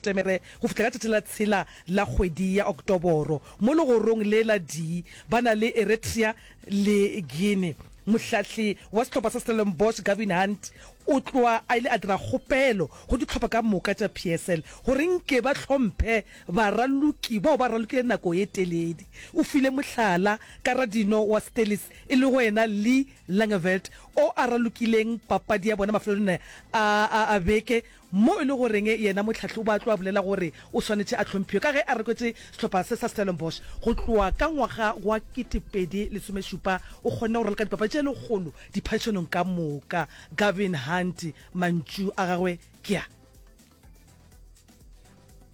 Temere go fihla ka tšatši la tshela la kgwedi ya Oktoboro, mo legorong le la Dee ba na le Eritrea le Guinea. Mohlahli wa sehlopha sa Stellenbosch Gavin Hunt o tloga a ile a dira kgopelo go dihlopha ka moka tša PSL gore nke ba hlomphe baraloki bao ba ralokile nako e teledi. O file mohlala ka radino wa Stellies e lego yena Lee Langeveld o a ralokileng papadi ya bona mafelelong a beke Mo e le goreng yena Mohlahlobu a tloa bolela gore o swanetše a hlomphiwe ka ge a rekotše sehlopha se sa Stellenbosch go tloa ka ngwaga wa ketepedi lesomešupa, o kgonne go ralka dipapadi tše lekgolo diphadišanong ka moka. Gavin Hunt, mantšu a gagwe ke a.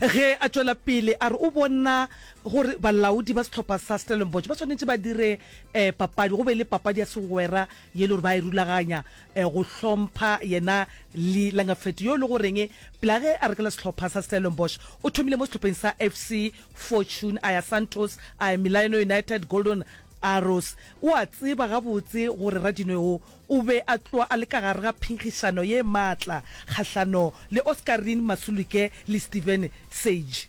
Ge a tšwela pele a re o bona gore balaodi ba sehlopha sa Stellenbosch ba swanetše ba dire um papadi go be le papadi ya segwera ye le gore ba e rulaganya um go hlompha yena Lee Langafetu yo e le goreng pela ge a rekela sehlopha sa Stellenbosch o thomile mo sehlopheng sa FC Fortune a ya Santos a ya Milaeno United Golden Arrows o a tseba gabotse gore Radinwe o O be a tloga a le ka gare ga phenkgišano ye maatla kgahlano le Oscarine Masulike le Steven Sage.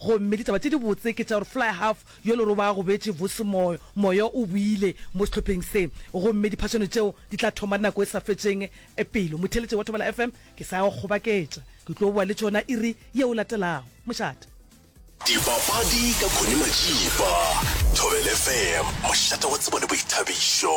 Gomme ditaba tše dibotse ke tša gore fly-half yo le roba gobetše vos moyo, moyo o boile mo sehlopheng se, gomme diphašano tšeo di tla thoma nako e sa fetšeng pelo motheletše wa Thobela FM ke sa go kgobaketša. Ke tlo boa le tšona iri yeo latelago. Mošate. Dipapadi ka Connie Matšipa, Thobela FM, mošate wa tsebo le boithabišo.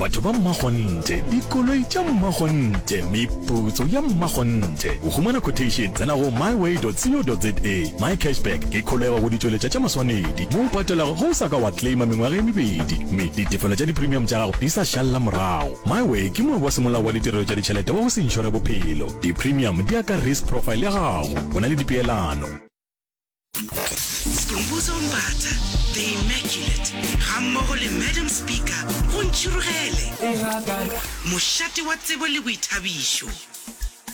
Batho ba mmakgonthe, dikoloi tša mmakgonthe, meputso ya mmakgonthe. Go humana quotation, tsena go myway.co.za. MyCashback ke kholego go ditšweletša tša maswanedi mo o patelago ge o sa ka wa claima mengwaga e mebedi mme ditefelo tša dipremium tša gago di sa šalela morago. MyWay ke moabi wa semolao wa ditirelo tša ditšhelete wa go se inšore bophelo. Dipremium di ya ka risk profile ya gago. O na le dipeelano. Skhumbuzo Mbatha, The Immaculate, gammogo le Madam Speaker go ntšhirogele. Mošate wa tsebo le boithabišo.